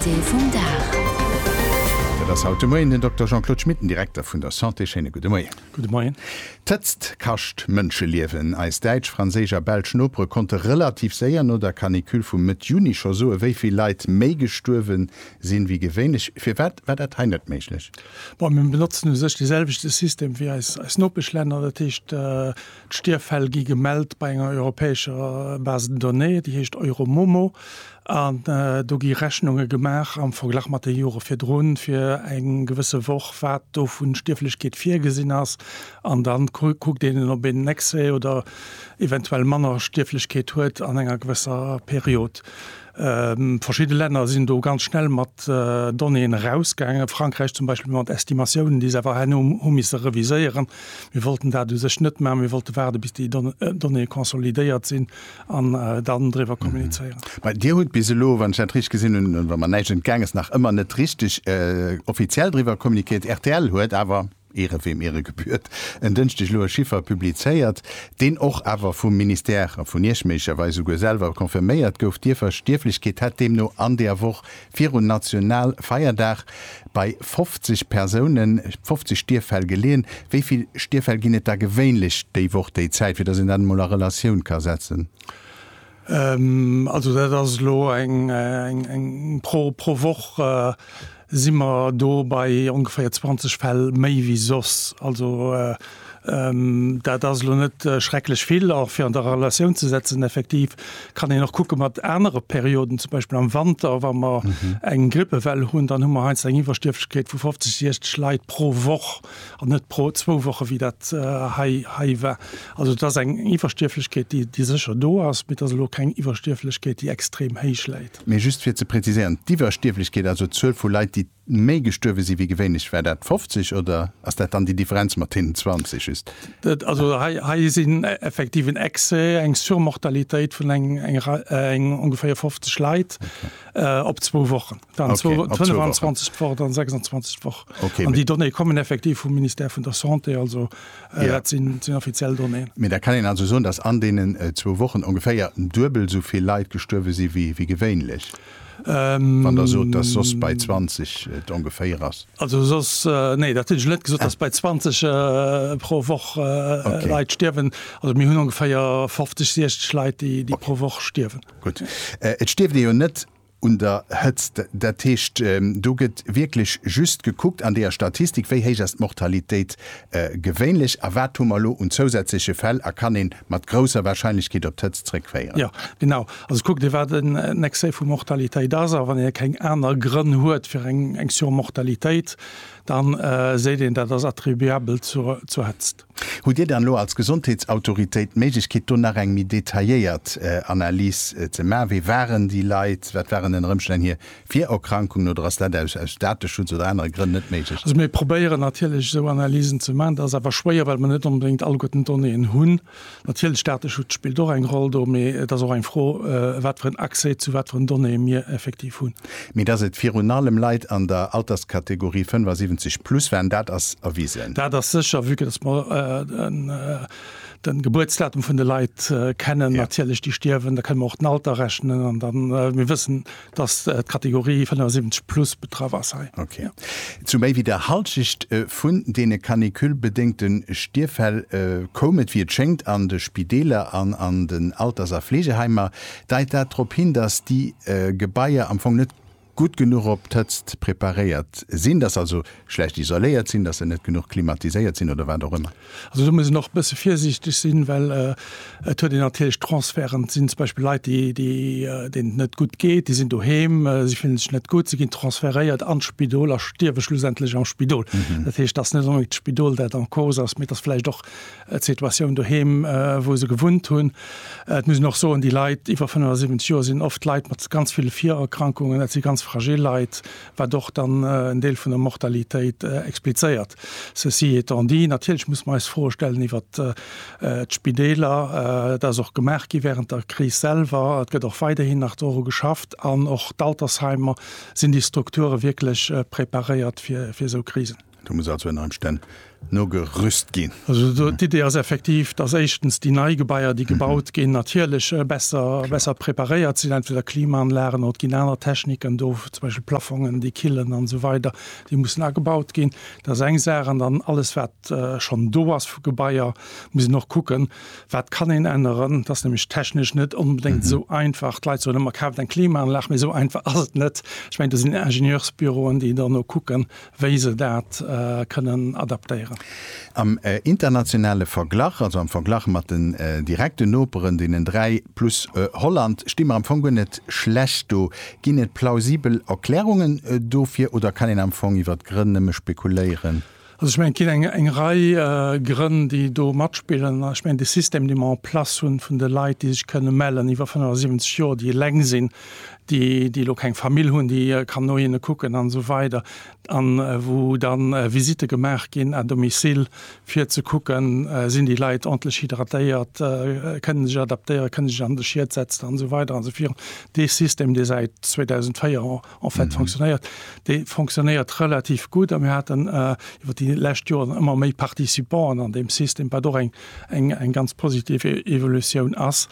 Invité vum Dag. Dat ass haut de Moien den Dokter Jean-Claude Schmit, den Direkter vun der Santé. Schéine gudde Moien. Gudde Moien. D'Hëtzt kascht Mënscheliewen. Eis däitsch, franséisch a belsch Nopere konnte relativ séier no der Canicule vu Mëtt Juni scho soen, wéi vill Leit méi gestuerwe sinn, wéi gewéinlech. Firwat war dat hei net méiglech? Bon, mir benotzen u sech de selwechte System wéi eis Nopeschlänner. Dat heescht, D'Stierffäll gi gemellt bei enger europäescher Base de données, déi heescht Euromomo, an do gi Rechnunge gemaach am Verglach mat de Jore virdrun, fir eng gewësse Woch, wat do vu Stierflechkeet virgesinn ass. An da kuckt een, ob een Excès oder eventuell manner Stierflechkeet huet an enger gewësser Period. Verschidde Länner sinn do ganz schnell mat Donnéeën erausgaangen, Frankräich zum Beispill mat Estimatiounen, déi se awer herno hu misse reviséieren. Mir wollten dat u sech net maachen, mir wollte waarden, bis déi Donnéeë consolidéiert sinn an dann driwwer kommunizéieren. Mä Dir hutt bis elo, wann ech dat richteg gesinn hunn, wa mer näischt entgaangen ass, nach ëmmer net richteg offiziell driwwer communiquéiert. Rtl huet awer. Ehre wem Ehre gebührt, en Dënschdeg elo e Chiffer publizéiert, deen och awer vum Ministère a vun Iech méiglecherweis souguer selwer confirméiert gouf, D'Ierfstierflechkeet hätt deemno an der Woch viru Nationalfeierdag bei 50 Persounen, 50 Stierffäll geleeën. Wéi vill Stierffäll ginn et da gewéinlech déi Woch, déi Zäit, fir datt een dat emol a Relatioun ka setzen? Also dat ass elo eng pro Woch si mer do bei ongeféier 20 Fäll méi wéi soss. Also dat ass elo net schrecklech vill. A fir an der Relatioun ze setzen, effektiv kann een och kucke mat anere Perioden, zum Beispill am Wanter, wa mer eng Grippewell hunn, dann hu mer heiansdo eng Iwwerstierflechkeet vu 50, 60 Leit pro Woch. an net pro zwou Woche wéi dat hei hei war. Also et ass eng Iwwerstierflechkeet, déi déi sécher do ass, mee et ass elo keng Iwwerstierflechkeet, déi extrem héich läit. Mee just fir ze präziséieren, d'Iwwerstierflechkeet, also d'Zuel vu Leit, déi méi gestuerwe si wéi gewéinlech, war dat 50 oder ass dat dann déi Differenz mat deenen 20 just? Also hei hei sinn effektiv en Excès, eng Surmortalitéit vun eng eng Rei eng ongeféier 50 Leit op zwou Wochen. Dann okay, 25 Woch dann 26 Woch okay, an die Donné kommen effektiv vum Minister vun der Santé also äh, ja. sinn sinn offiziell Donné. Mir da kann en also soen, dass an denen äh, zwo Wochen ongeféier duebel sovill Leiit gestuerwe si wie wie gewéinlech. Ähm, Wann der so dat sos bei 20 et äh, ongeféier ass. Also sos äh, nee dat hunch net gesot, ah. bei 20 äh, pro Woch äh, okay. Leiit stierwen oder mir hunn ongeféier 50 Schleit, déi, déi okay. pro Woch stierwen. Gut äh, Et stierft jo net un der Hëtzt. Dat heescht, do gëtt wierklech just gekuckt an deeër Statistik, wéi héich ass d'Mortalitéit gewéinlech a wat hu mer elo un zousätzleche Fäll a kann een mat grousser Wahrscheinlechkeet op d'Hëtzt zréckféieren. Jo, genau. Also kuckt ee, wat en Excès vu Mortalitéit ass a wann ee keng aner Grënn huet fir eng Surmortalitéit, da seet een, dat ass attribuabel zur Hëtzt. Hutt Dir dann elo als Gesondheetsautoritéit d'Méiglechkeet, do nach eng méi detailléiert Analys ze maachen? Wie waren déi Leit? Wat waren ënner Ëmstänn hir Virerkrankungen? Oder ass dat aus Dateschutz oder anere Grënn net méiglech? Also mir probéieren natierlech esou Analysen ze maachen. Dat ass awer schwéier, well mer net onbedéngt alleguerten d'Donnéeën hunn. Natierlech, Dateschutz spillt och eng Roll do, mee et ass och eng Fro, wat fir en Accès zu wat fir en Donnéeë mir effektiv hunn. Mee dass et virun allem Leit an der Alterskategorie 75 plus waren, dat ass erwisen. Dat ass sécher, vue que dass mer de Gebuertsdatum vun de Leit kennen, natierlech, déi stierwen. Da kënne mer och den Alter rechnen an da mir wëssen, dass d'Kategorie 75 plus betraff ass hei. Ok. Zu méi wéi der Hallschecht vun deene canicule-bedéngte Stierffäll koum et, wéi et schéngt, an de Spideeler an an den Alters a Fleegeheimer. Deit dat drop hin, dass déi Gebaier am Fong net gutt genuch op d'Hëtzt preparéiert sinn, dass se also schlecht isoléiert sinn, dass se net genuch klimatiséiert sinn oder wat och ëmmer? Also do muss een och e bësse virsiichteg sinn, well et huet een natierlech Transferten. Et sinn zum Beispill Leit, déi, deenen et net gutt geet, déi sinn doheem, si fillen sech net gutt, si ginn transferéiert an d'Spidol a stierwe schlussendlech am Spidol. Dat heescht, dass net onbedéngt d'Spidol dat en cause ass, mee dass vläicht och, d'Situatioun doheem, wou se gewunnt hunn. Et muss een och soen, déi Leit iwwer 75 Joer sinn oft Leit mat ganz ville Virerkrankungen, dat si ganz fragil Leit, wat och dann en Deel vun der Mortalitéit explizéiert. Ceci étant dit, natierlech muss mer eis Froe stellen iwwer d'Spideeler. Dat ass och gemaach gi während der Kris selwer. Et gëtt och weiderhin nach doru geschafft. An och d'Altersheimer, sinn déi Strukture wierklech preparéiert fir esou Krisen? Do muss also ënner Emstänn nogerüst ginn. Also d'Idee ass effektiv, dass éischtens déi nei Gebaier, déi gebaut ginn, natierlech besser preparéiert sinn, entweder Klimaanlagen oder et ginn aner Techniken do, zum Beispill Plafongen, déi killen an esou weider, déi mussen agebaut ginn. Dat ass eng Saach. An dann alles, wat schonn do ass vu Gebaier, muss een och kucken, wat kann een änneren. Dat ass nämlech technesch net onbedéngt esou einfach. D'Leit soen ëmmer, Kaaft eng Klimaanlag! Mee esou einfach ass et net. Ech mengen, do sinn Ingenieursbüroen, déi dann no kucken, wéi se dat kënnen adaptéieren. Am internationale Verglach, also am Verglach mat den direkten Noperen, deenen dräi plus Holland, sti mer am Fong guer net schlecht do. Ginn et plausibel Erklärungen dofir oder kann een am Fong iwwer d'Grënn nëmme spekuléieren? Also ech mengen, et ginn eng Rei Grënn, déi do matspillen. Ech mengen, de System, dee mer en place hunn, vun de Leit, déi sech kënne mellen iwwer 75 Joer, déi eleng sinn, déi déi elo keng Famill hunn, déi kann no hinne kucken an esou weider an wou dann Visitte gemaach ginn à domicile fir ze kucken, sinn déi Leit ordntlech hydratéiert, kënnen sech adaptéieren, kënne sech an de Schiet setzen an esou weider an esou virun. Dee System, dee säit 2004 en fait fonctionnéiert, dee fonctionnéiert relativ gutt a mir haten iwwer déi lescht Joren ëmmer méi Participanten an deem System, wat och eng eng ganz positiv Evolutioun ass.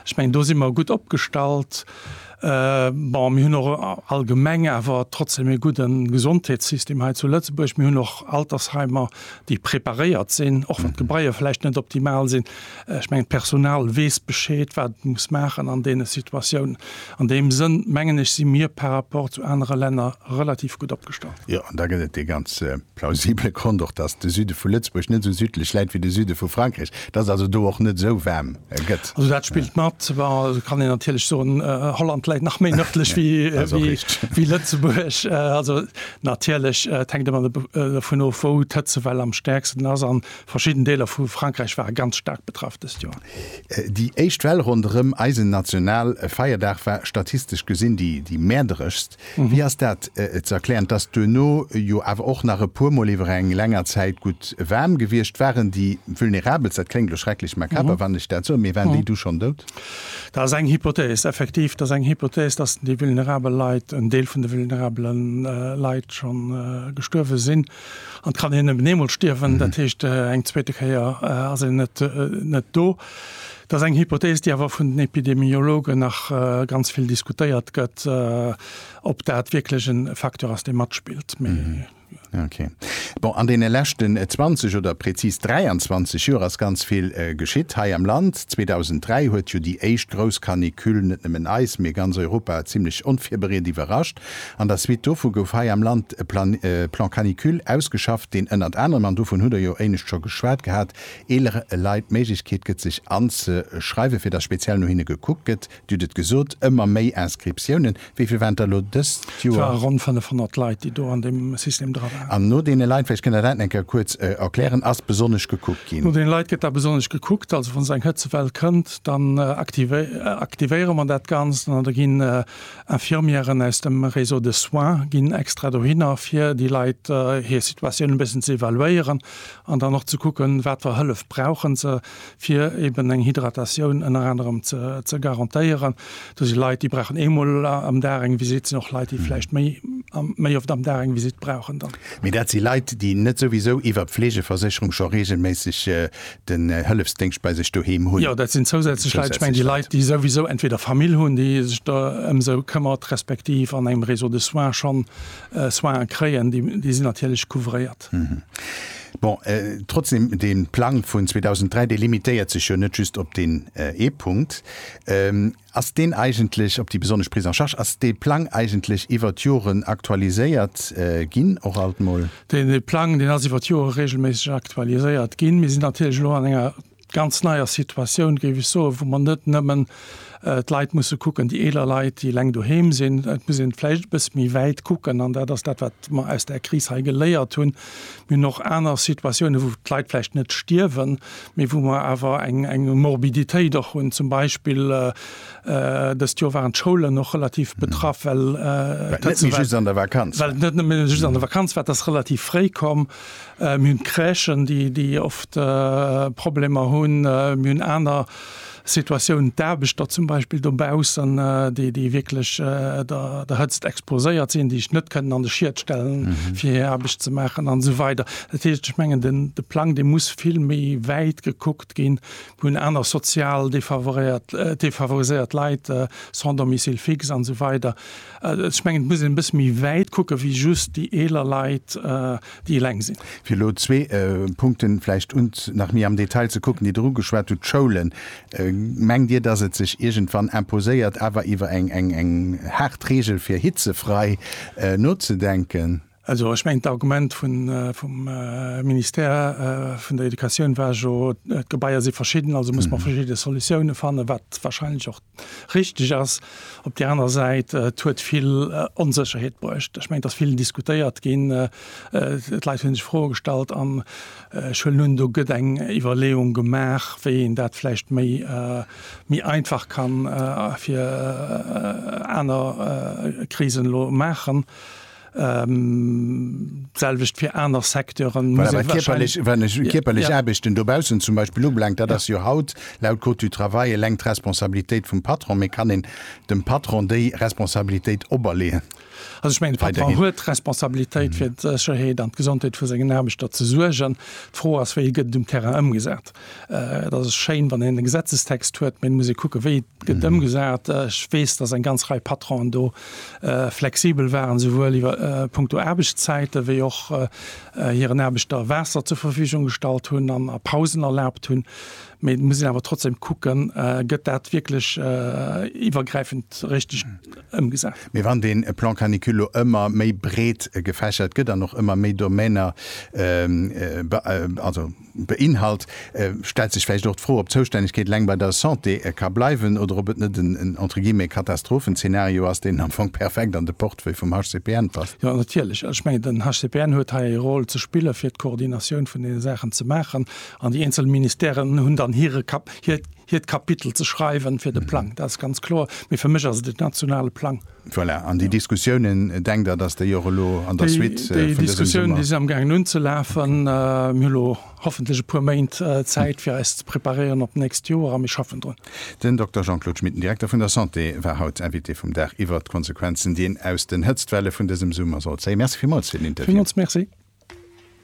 Ech mengen do si mer gutt opgestallt. Bon, mir hunn och allgemeng awer trotzdem ee gudde Gesondheetssystem hei zu Lëtzebuerg. Mir hunn och Altersheimer, déi preparéiert sinn, och wann d'Gebaier vläicht net optimal sinn. Ech mengen, d'Personal weess Bescheed, wat et muss maachen an deene Situatiounen. An deem Sënn, mengen ech, si mir par rapport zu anere Länner relativ gutt opgestallt. Jo, an da gëtt et dee ganze. Plausible Grond och, dass de Süde vu Lëtzebuerg net esou südlech läit wéi de Süde vu Frankräich, dass et also do och net esou waarm gëtt. Also dat spillt mat. Bon, et kann een natierlech soen, Holland läit nach méi nërdlech wéi Lëtzebuerg. Also natierlech, et hänkt ëmmer dovun of, wou d'Hëtzewell am stäerksten ass. A verschidden Deeler vu Frankräich ware ganz staark betraff dëst Joer. Déi éischt Well ronderëm eisen Nationalfeierdag war statistesch gesinn déi mäerderegst. Wéi ass dat ze erklären, et ass duerno jo awer och nach e puermol iwwer eng länger Zäit gutt waarm gewiescht? Waren déi Vulnerabelst, dat kléngt elo schrecklech makaber, wann ech dat soen, mee waren déi du schonn dout? Dat ass eng Hypothese, effektiv, dat ass eng Hypothese, datt déi vulnerabel Leit, en Deel vun de vulnerabele Leit scho gestuerwe sinn. An et kann een nëmmen eemol stierwen, dat heescht, eng zweete Kéier ass een net do. Dat ass eng Hypothees, déi awer vun den Epidemiologen nach ganz vill diskutéiert gëtt, ob dat wierklech e Facteur ass, dee matspillt. Mee. Okay. Bon, an deene leschten 20 oder prezis 23 Joer ass ganz vill geschitt hei am Land. 2003 huet jo déi éischt grouss Canicule net nëmmen eis, mee ganz Europa zimlech onvirbereet iwwerrascht. An der Suite dovu gouf hei am Land e Plan, Plan canicule, ausgeschafft, deen ënnert anerem, an dovun hutt Der jo éinescht scho geschwat gehat, eelere Leit d'Méiglechkeet gëtt sech anzeschreiwen, fir datt speziell no hinne gekuckt gëtt. Dir hutt et gesot, ëmmer méi Inscriptiounen. Wéi vill waren et der elo dëst Et Joer? ware ronn 500 Leit, déi do an deem System dra waren. An no deene Leit, vläicht kënnt Der dat nach eng Kéier kuerz erklären, ass besonnesch gekuckt No ginn? deene Leit gëtt da besonnesch gekuckt. Also wann esou eng Hëtzewell kënnt, dann aktivéiere mer dat Ganzt an da ginn Infirmièren aus dem Réseau de soins ginn extra dohinner, fir déi Leit hir Situatioun e bëssen ze evaluéieren. an dann och ze kucken, wat fer Hëllef brauchen se, fir eben eng Hydratatioun ënner anerem ze garantéieren. Do si Leit, déi brauchen eemol am Dag eng Visitt, sinn och Leit, déi vläicht méi, méi oft am Dag eng Visitt brauchen dann. Mee dat si Leit, déi net souwisou iwwer d'Fleegeversécherung scho reegelméisseg den Hëllefsdéngscht bei sech doheem hunn. Jo, dat sinn zousätzlech Leit. Ech mengen déi Leit, déi souwisou entweder Famill hunn, déi sech do ëm se këmmert, respektiv an engem Réseau de soins schonn Soinen kréien, déi sinn natierlech couvréiert. Stad. Bon, trotzdem, dee Plang vun 2003, dee limitéiert sech jo net just op deen ee Punkt. Ass deen eigentlech, op déi besonnesch Prise en charge, ass dee Plang eigentlech iwwer d'Joren aktualiséiert ginn, och alt mol? Dee Plang, deen ass iwwer d'Jore reegelméisseg aktualiséiert ginn. Mir sinn natierlech elo an enger ganz neier Situatioun, géif ech soen, wou mer net nëmmen d'Leit musse kucken, déi eeler Leit, déi eleng doheem sinn. Et muss ee vläicht e bësse méi wäit kucken an dat ass dat, wat mer aus där Kris hei geléiert hunn. Mir hunn och aner Situatiounen, wou d'Leit vläicht net stierwen, mee wou mer awer eng eng Morbiditéit och hunn. Zum Beispill dëst Joer waren d'Schoulen och relativ betraff, well et net nëmme just an der Vakanz war, dat ass relativ fréi komm. Mir hunn d'Crèchen, déi oft Problemer hunn. Mir hunn aner Situatiounen, d'Aarbechter zum Beispill dobaussen, déi wierklech der Hëtzt exposéiert sinn, déi sech net kënnen an de Schiet stellen, fir hir Aarbecht ze maachen an esou weider. Dat heescht, ech mengen, de Plang, dee muss vill méi wäit gekuckt ginn. Mir hunn aner sozial defavoriséiert Leit, sans domicile fixe an esou weider. Ech mengen, et muss een e bësse méi wäit kucken, wéi just déi eeler Leit, déi eleng sinn. Fir elo zwee Punkten vläicht un, nach méi am Detail ze kucken, déi Der ugeschwat hutt, d'Schoulen. Mengt Dir, dass et sech iergendwann imposéiert, awer iwwer eng haart Reegel fir hitzefrei nozedenken? Also ech mengen, d'Argument vum Ministère vun der Educatioun war jo, d'Gebaier si verschidden, also muss mer verschidde Solutiounen fannen, wat wahrscheinlech och richtig ass. Op där anerer Säit, et huet vill Onsécherheet bruecht. Ech mengen, et ass vill diskutéiert ginn, d'Leit hu sech Froe gestallt an ech huelen un, do gëtt eng Iwwerleeung gemaach, wéi een dat vläicht méi einfach ka fir aner Krisen elo maachen. D'selwecht fir aner Secteuren. Voilà, well kierperlech, wann ech kierperlech Aarbechten dobaussen zum Beispill ubelaangt, dat ass jo haut laut Code du travail eleng d'Responsabilitéit vum Patron. Mee kann een dem Patron déi Responsabilitéit operleeën? Also ech mengen, de Patron huet d'Responsabilitéit fir d'Sécherheet an d'Gesondheet vu sengen Aarbechter ze suergen. D'Fro ass, wéi gëtt et um Terrain ëmgesat? Et ass schéin, wann een e Gesetzestext huet, mä et muss ee kucken, wéi et gëtt ëmgesat. Ech weess, datt eng ganz Rei Patronen do flexibel waren, esouwuel iwwer punkto Aarbechtszäite wéi och hiren Aarbechter Waasser zur Verfügung gestallt hunn an a Pausen erlaabt hunn. Mä et muss een awer trotzdem kucken, gëtt dat wierklech iwwergräifend richteg ëmgesat. Mä wann dee Plan canicule elo ëmmer méi breet gefächert gëtt an och ëmmer méi Domainer, also, beinhalt, stellt sech vläicht och d'Fro, ob d'Zoustännegkeet eleng bei der Santé ka bleiwen oder ob et net en, entre guillemets, Katastrophenzeenario ass, deen am Fong perfekt an de Portefeuille vum HCPN passt. Jo, natierlech. Also ech mengen, den HCPN huet hei e Rôle ze spillen, fir d'Koordinatioun vun deene Saachen ze maachen, an déi eenzel Ministèren hunn dann hire, hiert Kapitel ze schreiwen fir de Plang. Dat ass ganz kloer. Mee fir mech ass et en nationale Plang. Voilà. An déi Diskussiounen, denkt Der, datt déi och elo an der Suite vun dësem Summer. Déi Diskussiounen, déi sinn am gaangen unzelafen. Mir hunn elo hoffentlech e puer Méint Zäit, fir eis ze preparéieren op d'nächst Joer. A mir schaffen drun. Den Dokter Jean-Claude Schmit, den Direkter vun der Santé, war haut Invité vum Dag iwwert d'Konsequenzen, déi een aus den Hëtztwelle vun dësem Summer sollt zéien. Merci villmools fir den Interview. Villmools Merci.